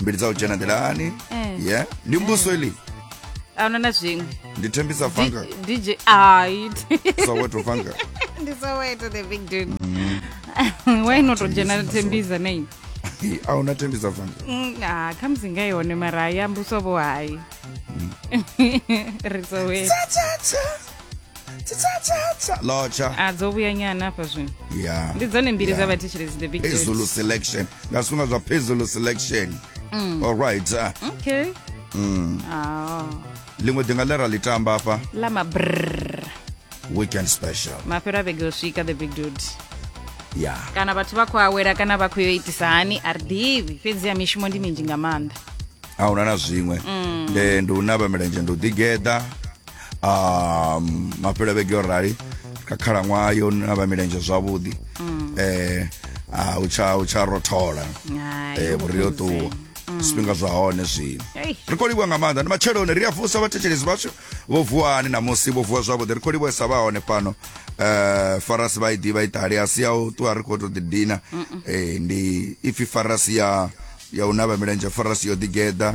mbili dza u dzhena nḓilani Eh. ye ndi mbuso ili a huna na zwiṅwe ndi thembisa fanga Di- dj ai soweto fanga ndi soweto the big dude why not u dzhena thembiza na ini Hi, a huna thembisa fanga Mm, ah, khamusi nga yone mara hayi ambuso vho hayi ri soweto tsitsatsa lotsha a dzo vhuya nyana hafha zwino ya ndi dzone mbili dza vhathetshelezi the big Dates. phezulu selection nga zwifhinga zwa phezulu selection Mm. alright ah, okay mm. Ah, ḽiṅwe ḓinga ḽe ra ḽi tamba afha ḽa mabrr weekend special mafhelo a vhege u swika the big dude ya kana vhathu vha khou awela kana vha khou yo itisa hani a ri ḓivhi fhedzi ya mishumo ndi minzhi nga maanḓa a huna na zwiṅwe Mm. Eh, ndi u navha milenzhe ndi u ḓigeḓa um mafhelo a vhege yo rali kha khalaṅwaha yo na vha milenzhe zwavhuḓi um a u tsha u tsha rothola Hai, eh vhuri yo vhukuma. ṱuwa zwifhinga zwa hone zwino Ei. ri khou livhuwa nga maanḓa ndi matsheloni ri a vusa vhathetshelesi vhashu vho vuwani namusi vho vuwa zwavhuḓi ri khou livhuwesa vha hone fhano um farasi vha i ḓivha iṱali a si ya u ṱuwa ri khou tou ḓidina Eh, ndi ipfi farasi ya ya u navha milenzhe farasi yo ḓigeḓa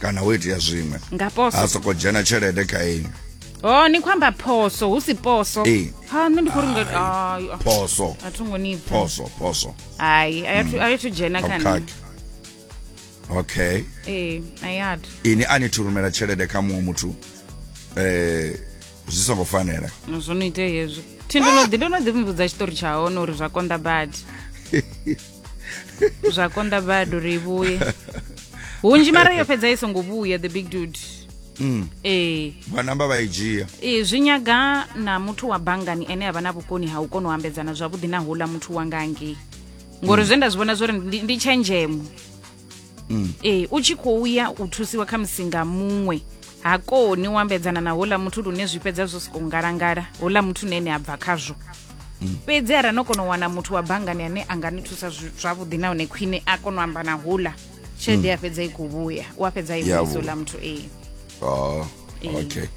kana wo itea zwiṅwe nga poso ha soko dzhena tshelede kha inwi oh ni khou amba phoso hu si poso Ee. ha nṋe ndi khou ri nga ai, ah, phoso a thi ngo ni pfa phoso phoso hai a yathu- a yathu dzhena kha nṋe abukhaki okay ee a yathu ini a ni thurumela tshelede kha muṅwe muthu eh zwi songo fanela zwo no itea hezwo thi ndo no ḓi ndo no ḓi mvudza tshiṱori tsha hone uri zwa konḓa badi zwa konda bado ri vhuye hunzhi mara yo fhedza i songo vhuya the big dude mm. ee vha namba vha i dzhia ee zwi nyaga na muthu wa banngani ene a vha na vhukoni ha u kona u ambedzana zwavhuḓi na houḽa muthu wanga ngei ngori mm. zwe nda zwi vhona zwori ndi tshenzhemo ee u tshi khou ya u thusiwa kha musi nga muṅwe ha koni u ambedzana na houḽa muthu lune zwi fhedza zwo sokou ngalangala houḽa muthu na ene a bva khazwo fhedzi arali no kona u wana muthu wa banngani ane a nga ni thusa zwi- zwavhuḓi nahone khwine a kona u amba na houḽa tshelede ya fhedza i khou vhuya u a fhedza i Ya vhuisa vhuya. houḽa muthu ee Oh, okay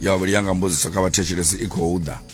ya vhuli yanga mbudziso kha vhathetshelesi i khou ḓa